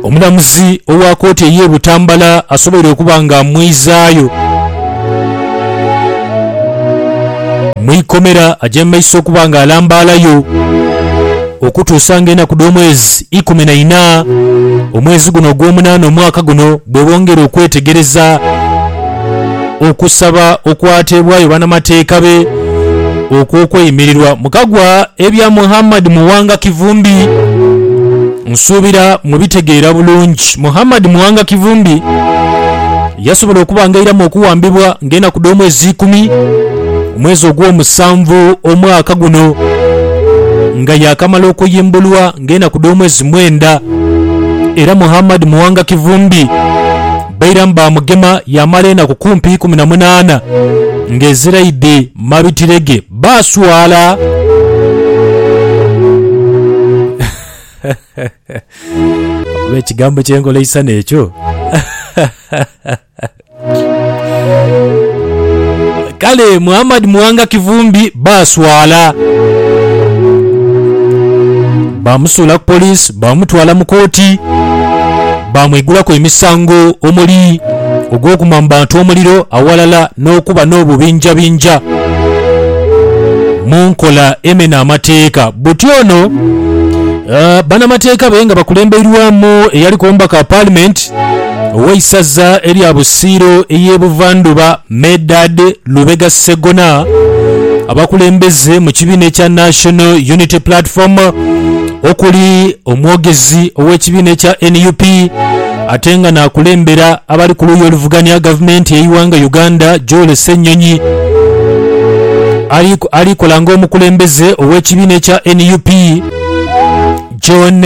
Omulamuzi owa kooti ey'e Butambala asoboire okuba nga amwizaayo mu ikomera aje mu maiso okuba nga alambaalayo okutuusa nga enaku dh'omwezi ikumi na ina omwezi guno ogw'omunaana omwaka guno bwebongera okwetegereza. okusaba okwateebwayo banamateeka be okw'okweyimirirwa mu kagwa ebya Muhammad Muwanga Kivumbi Nsuubira mubitegeera bulungi. Muhammad Muwanga Kivumbi yasobola okubangairamu okuwambibwa ng'enaku dh'omwezi ikumi omwezi ogw'omusanvu omwaka guno nga yaakamala okuyimbulwa ng'enaku dh'omwezi mwenda era Muhammad Muwanga Kivumbi Bairamu baamugema yaamala enaku kumpi ikumi na munaana ng'eziraidhi mu mabitire ge. Baaswala. Oba ekigambo ky'engoleisana ekyo! Kale Muhammad Muwanga Kivumbi baaswala. Baamusuula ku poliisi baamutwala mu kooti. Baamwigulaku emisango omuli ogw'okuma mu bantu omuliro awalala n'okuba n'obubinjabinja mu nkola emena amateeka. Buti ono banamateeka be nga bakulembeirwamu eyaliku omubaka wa paalimenti ow'eisaza erya Busiiro ey'e Buvandhuba, Medard Lubega Ssegona, abakulembeze mu kibiina ekya National Unity Platform okuli omwogezi ow'ekibiina ekya nup ate nga n'akulembera abali ku luuyi oluvuganya gavumenti y'eighanga Uganda Joel Ssenyonyi ali kola ng'omukulembeze ow'ekibiina ekya nup John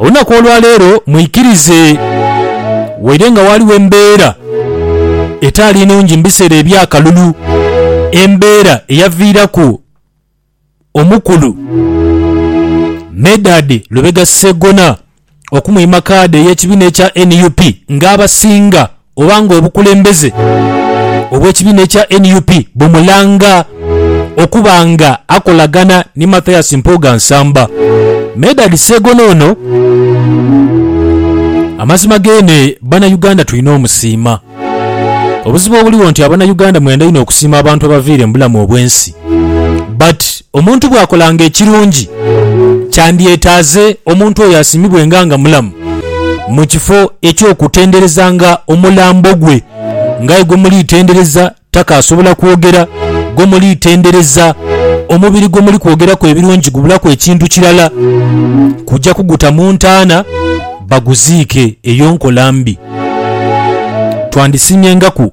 Olunaku olwa leero mwikirize, waire nga waaliwo embeera etaali nungi mu biseera eby'akalulu, embeera eyaviiraku omukulu Medard Lubega Ssegona okumwima kaadi ey'ekibiina ekya nup ng'abasinga oba nga obukulembeze obw'ekibiina ekya nup bumulanga okuba nga akolagana ni Mathias Mpuuga Nsamba. Medard Segono ono amazima geene bana Uganda tulina omusiima. Obuzibu obuligho nti abana Uganda mwenda inho okusiima abantu abaviire mu bulamu obw'ensi. But omuntu bw'akolanga ekirungi, kyandyetaaze omuntu oyo asiimibwenga nga mulamu, mu kifo eky'okutenderezanga omulambo gwe. Ng'aye gwe muli tendereza takaasobola kwogera, gwe muli tendereza omubiri gwe muli kwogeraku ebirungi gubulaku ekintu kirala kuja kuguta mu ntaana baguziike. Eyo nkola mbi. Twandisiimyengaku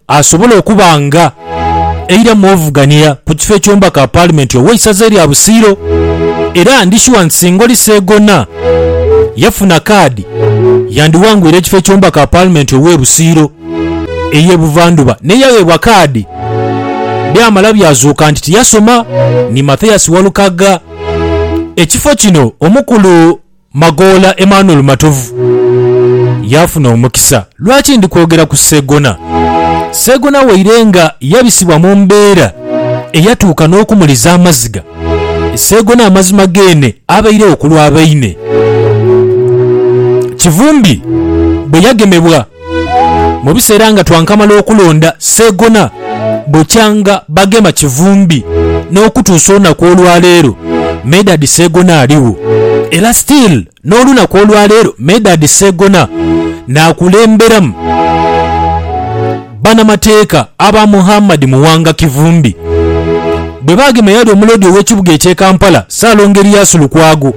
asobole okuba nga eira mu ovuganira ku kifo eky'omubaka wa Paalimenti ow'eisaza erya Busiro era ndi shuwa nti singa oli Seegona yafuna kaadi yandiwangwire ekifo eky'omubaka wa Paalimenti ow'e Busiro ey'e Buvandhuba naye yagheebwa kaadi byamala byazuuka nti tiyasoma ni Mathias Walukagga. Ekifo kino omukulu. Magoola Emmanuel Matovu yaafuna omukisa. Lwaki ndi kwogera ku Seegona? Seegona waire nga yabisibwa mu mbeera eyatuuka n'okumuliza amaziga. Seegona amazima geene abairegho ku lwa baine. Kivumbi bwe yagemebwa Mu biseera nga twankamala okulonda Seegona bukyanga bagema Kivumbi n'okutuusa olunaku olwaleero Medard Seegona aligho era still n'olunaku olwaleero Medard Seegona n'akulemberamu banamateeka aba Muhammad Muwanga Kivumbi. Bwe baagema eyali omuloodi ow'ekibuga eky'e Kampala Ssaalongo Erias Lukwago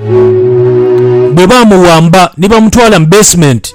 bwe baamuwamba ni bamutwala mu basement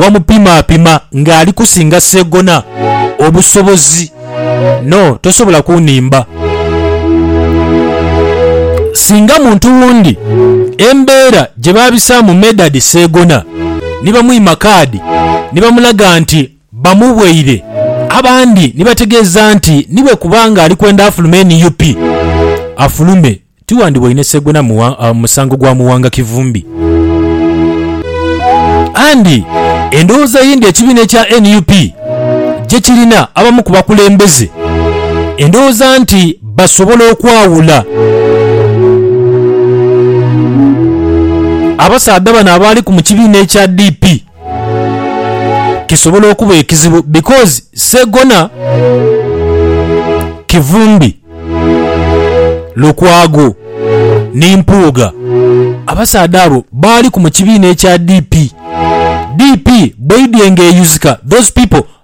wamupimaapima ng'ali kusinga Sseggona obusobozi. No, tosobola kunimba. Singa muntu wundi embeera gye baabisaamu Medard Sseggona ni bamwima kaadi ni bamulaga nti bamubweire abandi ni bategeeza nti ni bwe kuba ng'ali kwenda afulume nup, afulume. Tiwandiboine Segwena musango gwa Muwanga Kivumbi. And endowooza ye ndi ekibiina ekya nup gyekirina abamu ku bakulembeze endowooza nti basobola okwawula abasaadha bano abaaliku mu kibiina ekya DP. kisobola okuba ekizibu because Ssegona Kivumbi, Lukwago ni Mpuuga abasaadha abo baaliku mu kibiina ekya DP. DP bweidhye nga eyuzika those people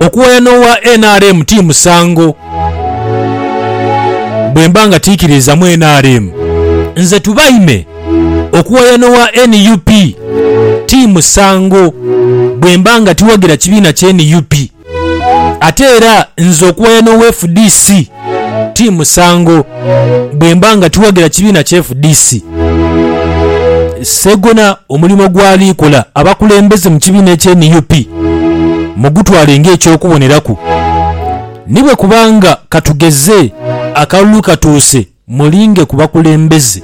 Okuwaya n'owa nrm ti musango. Bwe mba nga tiikiriizamu nrm, nze Tubaime okuwaya n'owa nup ti musango bwe mba nga tiwagira kibiina kya nup. Ate era nze okuwaya n'owa fdc ti musango bwemba nga tiwagira kibiina ki fdc. Ssegona omulimo gwali kola abakulembeze mu kibiina ekye nup mugutwale nga ekyokuboneraku ni bwekubanga katugeze akalulu katuuse mulinge ku bakulembeze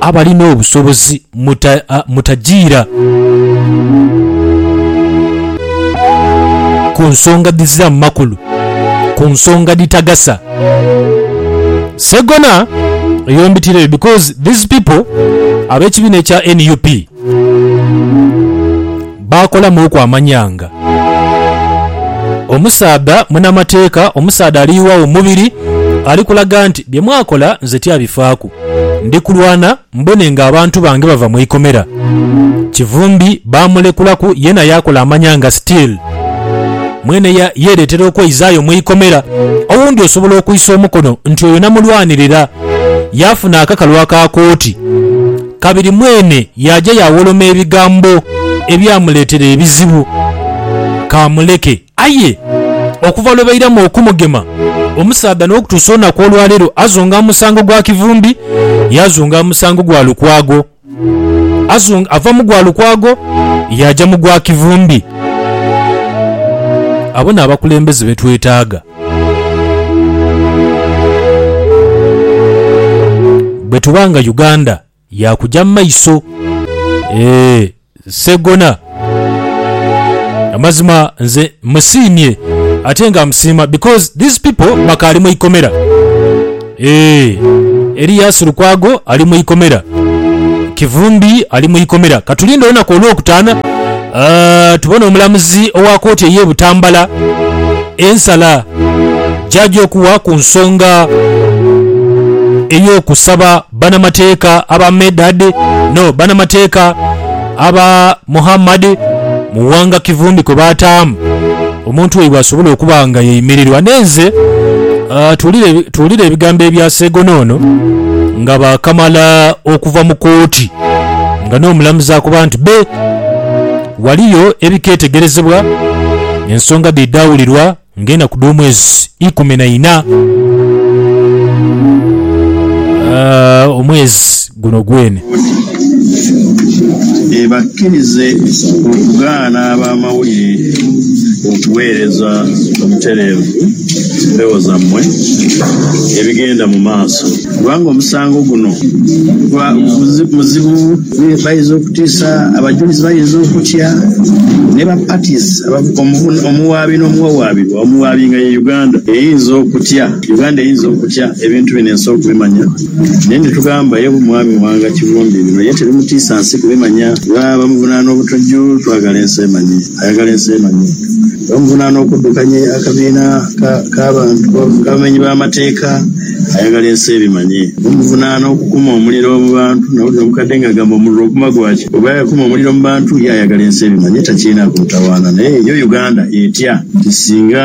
abalina obusobozi. muta, a, mutajiira ku nsonga dhiziramu makulu, ku nsonga dhitagasa. Ssegona yombitireyo because these people ab'ekibiina ekya nup baakolamuuku amanyanga. Omusaadha munamateeka, omusaadha ali iwagho mu mubiri ali kulaga nti bye mwakola nze tyabifaaku. Ndi kulwana Mbone nga abantu bange bava mu ikomera. Kivumbi baamulekulaku yeena yaakola amanyanga still. Mwene ya yeereetera okweizaayo mu ikomera. Owundi osobola okwisa omukono nti oyo namulwanirira, yaafuna akakalu aka kooti. Kabiri mwene yaaja yaawoloma ebigambo ebyamuleetera ebizibu. Ka muleke. Aye okuva lwe bairamu okumugema, omusaadha n'okutuusa olunaku olwa leero azunga musango gwa kivumbi, yaazunga musango gwa Lukwago. Azunga, ava mu gwa Lukwago yaaja mu gwa kivumbi. Abo n'abakulembeze be twetaaga. Bwe tuba nga Uganda. Yakuja mu maiso. Eeh Ssegona. Amazima nze musiimye ate nga musiima because these people bakaali mu ikomera. Eeh Elias Lukwago ali mu ikomera. Kivumbi ali mu ikomera. Katulinde olunaku olwokutaana tubone omulamuzi owa kooti eye Butambala ensala gyaja okuwa ku nsonga eyokusaba Banamateeka aba Medad no banamateeka aba Muhammad mu ghanga Kivumbi kwe baataamu omuntu waibwe asobole okuba nga yeimirirwa n'enze. Tuwulire, tuwulire ebigambo ebya Seegono ono nga baakamala okuva mu kooti nga n'omulamuzi akoba nti be waliyo ebiketegerezebwa ensonga dhaidha wulirwa ng'enaku dh'omwezi ikumi na ina. Omwezi guno gwene. Ebakkirize okugaana ab'amawulire okuweereza obutereevu empewo zammwe ebigenda mu maaso, kubanga omusango guno muzibu. Baidha okutiisa, abajulizi baidha okutya, ni ba parties abavuga omuwaabi n'omuwawaabirwa, omuwaabi nga ye Uganda, eyinza okutya, Uganda eyinza okutya ebintu bino ensi okubimanya. Naye nitugamba ye Mwami Muwanga Kivumbi bino ye tibimutiisa nsi kubimanya kuba bamuvunaana obutujju, twagala ensi emanye. Ayagala ensi emanye era omuvunaana okuddukanya akabiina k'abantu abamenyi b'amateeka ayagala ensi ebimanye. Omuvunaana okukuma omuliro mu bantu. Nawulira omukadde ng'agamba omuliro oguma gwaki? Bw'oba yakuma omuliro mu bantu ye ayagala ensi ebimanye takyirinaku mutawaana. Naye yo Uganda etya nti singa.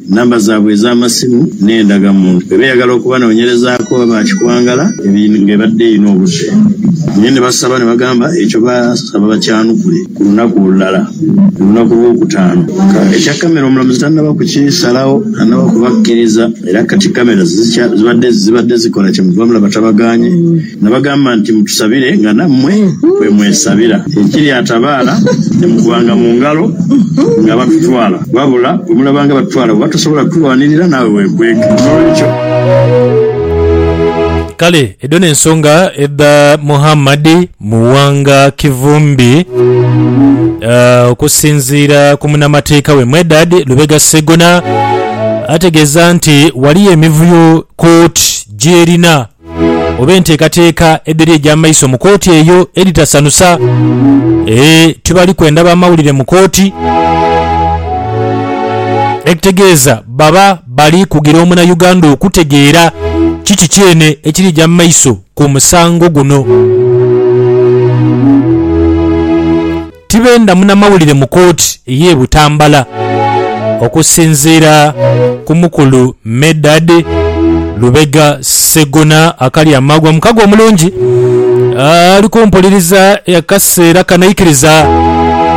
Namba zaabwe ez'amasimu n'endagamuntu. Bwe beeyagala okubanoonyerezaako oba baakikwangala nga ebadde erina obudde, naye ne basaba ne bagamba ekyo basaba bakyanukule ku lunaku olulala, ku lunaku Lwokutaano. Ekya kkamera omulamuzi tannaba kukisalagho, tannaba kubakkiriza era kati kkamera zibadde zikola kyemuva mulaba tabagaanye. Nabagamba nti, Mutusabire nga nammwe bwe mwesabira. Ekiri atabaala ni mukubanga mu ngalo nga batutwala. Wabula bwe mulaba nga batutwala, bw'oba tosobola kutulwanirira, naawe weekweke. N'olwekyo. Kale edho n'ensonga edha Muhammad Muwanga Kivumbi okusinziira ku munamateeka we Medard Lubega Ssegona ategeeza nti waliyo emivuyo kkooti gy'erina oba enteekateeka edhiri egy'amaiso mu kooti eyo edhitasanusa. Ee, tibali kwenda bamawulire mu kooti, ekitegeeza baba bali kugira Omunayuganda okutegeera kiki kyene ekirija mu maiso ku musango guno. Tibenda munamawulire mu kooti ey'e Butambala. Okusinziira ku mukulu Medard Lubega Ssegona Akalyamaagwa, omukago omulungi ali ku mpuliriza akaseera kano aikiriza.